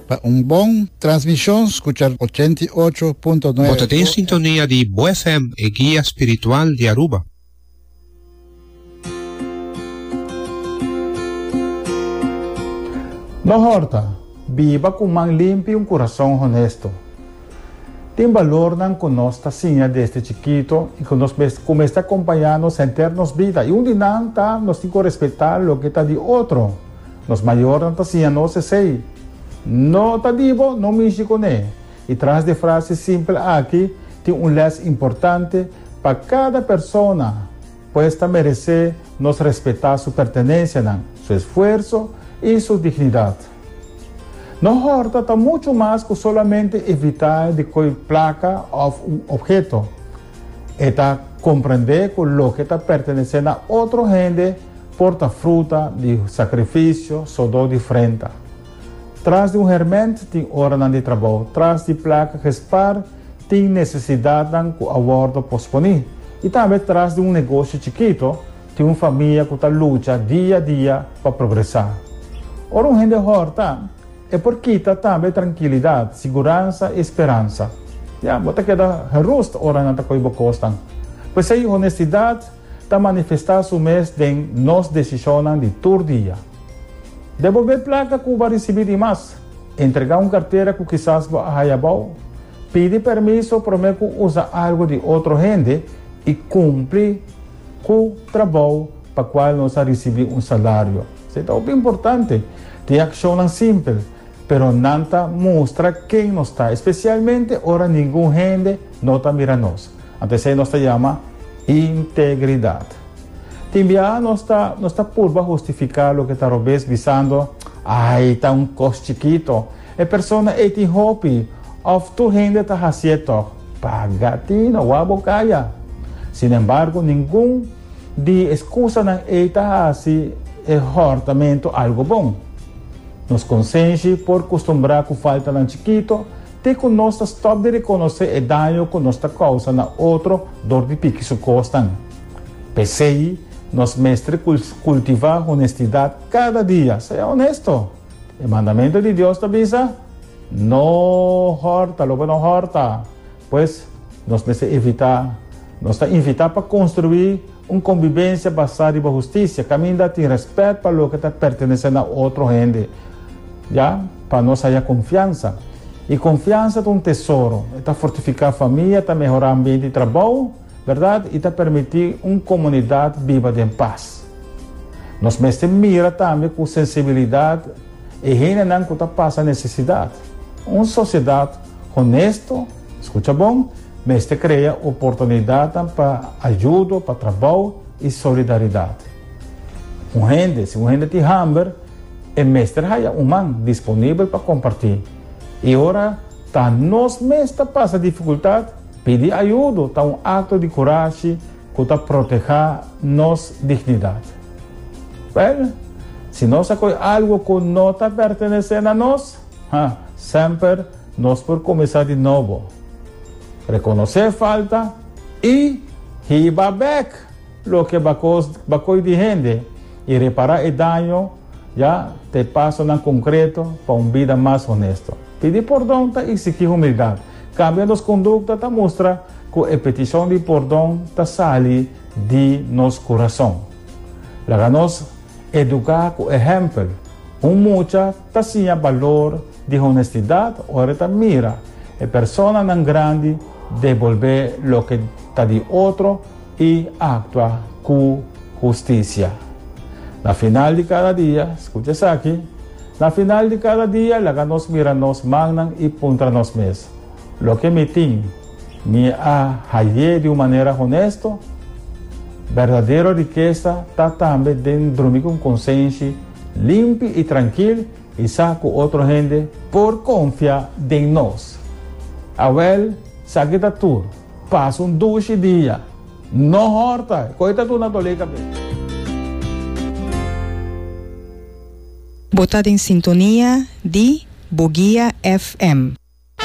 Pa un bon transmishon skucha ochenta i ocho punto nuebe. Bo ta den sintonia di Bo FM, e guia spiritual di Aruba. No horta, Biba ku man limpi i un kurason honesto. Tin balornan ku nos ta siña desde chikito i ku nos mes ku mester akompañá nos henter nos bida, i un di nan ta nos tin ku respetá loke ta di otro. Nos mayornan ta siña nos esei, No ta di bo, no mishi kuné. I tras di e frase simpel aki tin un lès importante pa kada persona, pues ta meresé nos respetá su pertenensianan, su esfuerso i su dignidat. No hòrta ta muchu mas ku solamente evitá di koi plaka òf un opheto. E ta komprendé ku loke ta pertenesé na otro hende por ta fruta di sakrifisio sodó di frenta. Tras di un hermènt tin oranan di trabou, tras di plak gespar tin nesesidatnan ku a wòrdu posponí, i tambe tras di un negosio chikito tin un famia ku ta lucha dia dia pa progresá. Ora un hende hòrta, E por kita tambe trankilidat, siguransa i speransa. Ya, bo ta keda gerust ora nan ta koe bo kosnan. P'esei honestidat ta manifestá su mes den nos desishonnan di tur dia. Den bo be plaka ku bo a risibí di mas, entregá un kartera ku kisas bo a haya bou, pidi permiso promé ku usa algu di otro hende i kumpli ku trabou pa kual nos a risibí un salario. Si ta hopi importante. Reaccionnan simpel, pero nan ta mustra ken nos ta, especialmente ora ningun hende no ta mira nos. Ant esei nos ta yama integridad. Tin biaha nos ta nos ta purba hustifica loke ta robes bisando, Ay, ta un cos chikito. E persona ei tin hopi. Of tur hende ta haci'e tog. Paga tin, oa bo caya. Sin embargo, ningun. Di e skusanan ei ta hasi e hòrtamentu algu bon. Nos konsenshi por kustumbrá ku faltanan chikitu te ku nos ta stòp di rekonosé e daño ku nos ta kousa na otro dor di piki su kosnan. P'esei, nos mester kultivá honestidat kada dia. Sea honesto. E mandamentu di Dios ta bisa, No hòrta loke no hòrta. Pues, nos mester evitá. Nos ta invitá pa konstruí un kombibensia basá riba hustisia kaminda tin rèspèt pa loke ta pertenesé na otro hende. Ya pa nos haya konfiansa. I konfiansa ta un tesoro. E ta fortifiká famia, ta mehorá ambiente di trabou, bèrdat, i ta permití un komunidat biba den pas. Nos mester mira tambe ku sensibilidat e hendenan ku ta pasa nesesidat. Un sosiedat Honesto, Scucha bon, mester crea oportunidadnan pa ayudo, pa trabou y solidaridad. Un hende, si un hende tin hamber, e mester haya un man disponibel pa comparti. Y ora ta nos mes ta pasa dificultad, pidi ayudo ta un acto di curashi cu ta proteha nos dignidad. Well, si nos a coy algo cu no ta pertenece na nos, Ha, semper nos por kuminsá di nobo, rekonosé falta i hiba bèk loke bakos bakoi di hende i repará e daño ya ta e pasonan konkreto pa un bida mas honesto. Pidi pordon ta iksigí humildat. Kambia nos kondukta ta mustra ku e petishon di pordon ta sali di nos kurason. Laga nos eduká ku ehèmpel un mucha. Ta siña balor di honestidad ora e ta mira e personanan grandi devolbé loke ta di otro i actua cu husticia. Na final di cada dia, scucha esaki, Na final di cada dia laga nos mira nos mannan i puntra nos mes, Loke mi tin, mi a hayé di un manera honesto? Berdadero rikesa ta tambe den drumi cu un consenshi, Limpi i trankil i sa ku otro hende por konfia den nos. Awèl, esaki ta tur. Pasa un dushi dia. No hòrta e koi ta duna dolé kabes. Bo ta den sintonia di Boguia FM.